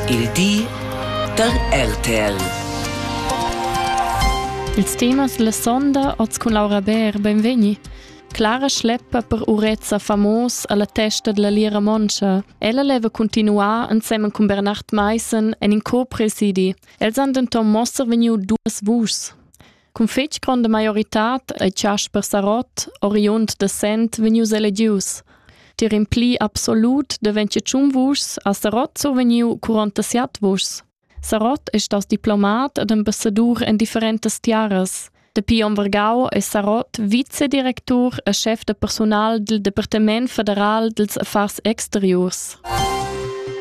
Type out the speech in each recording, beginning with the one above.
Il di da RTL. Ils temas la sonda oz cun Laura Bär, benvegni. Clara schleppa per urezza famos alla testa della lira moncha. Ella leva continuar insemen con Bernard Meissen en in co-presidi. Els han denton moster vegniu duas vuschs. Cun fetg gronda maioritad ei Chasper Sarott, oriund da Sent, vegnius elegius. Tier in pli absolut deventje tschun vuschs ha Sarott survegniu 47 vuschs. Sarott è stas diplomat ed ambassadur en differentas tiaras. Dapi onn Vargau è Sarott vicedirectur e chef da personal del Departement federal dels affars exteriors.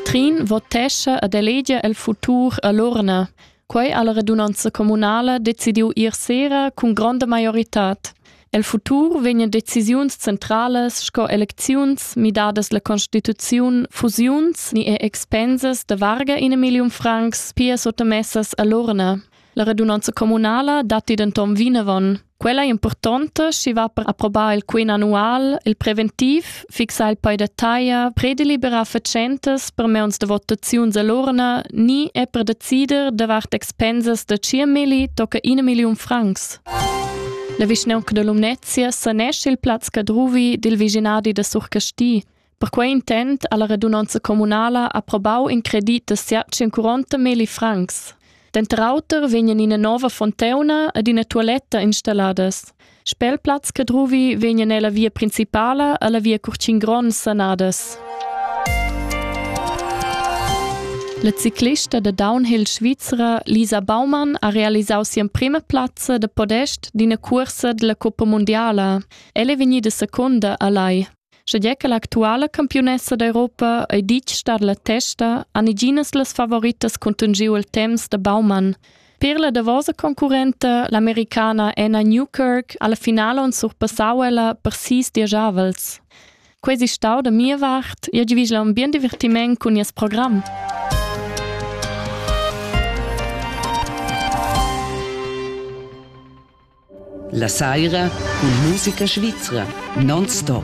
Trin votesce ed elegia el futur a l'urna. Quei ha la radunanza communala decidiu ier sera cun gronda maioritad. El futur vegnan decisiuns centralas sco elecziuns, midadas la constituziun, fusiuns ni er expensas da varga in million francs pia sottamessas all'urna. La radunanza communala datti denton vinavon. Quella ei impurtonta, schi va per approbar il quin annual, il preventiv, fixar il poi da taglia, prederliberar fatschentas per meuns de votaziuns all'urna, ni è per decider davart expensas da 5.000 tocca 1 million francs. La vischnaunca de Lumnezia sanesce il plaz Cadruvi dil viginadi da Surcasti. Per quei intent ha la radunonza communala approbau in credit da siat 140 meli francs. Denter auter vegnan ina nova fonteuna ed ina tualetta installadas. Spelplatz Cadruvi vegnan ella via principala alla via Curcin Gron sanadas. La ciclista da downhill svizra Lisa Baumann ha realisau sia prima plazza da podest d'ina cursa della Coppa Mondiala. Ella è vegnida secunda a Lai. Sche che l'actuala campiunessa d'Europa ei ditg star la testa, han iginas las favoritas contungiu il temps da Baumann. Per la davosa concurrenta, l'americana Anna Newkirk, alla finale on surpassau ella per sis diagiavels. Quei si stau da mia vart, io divigla un bien divertiment cun nies program. La saira cun musica svizra non stop.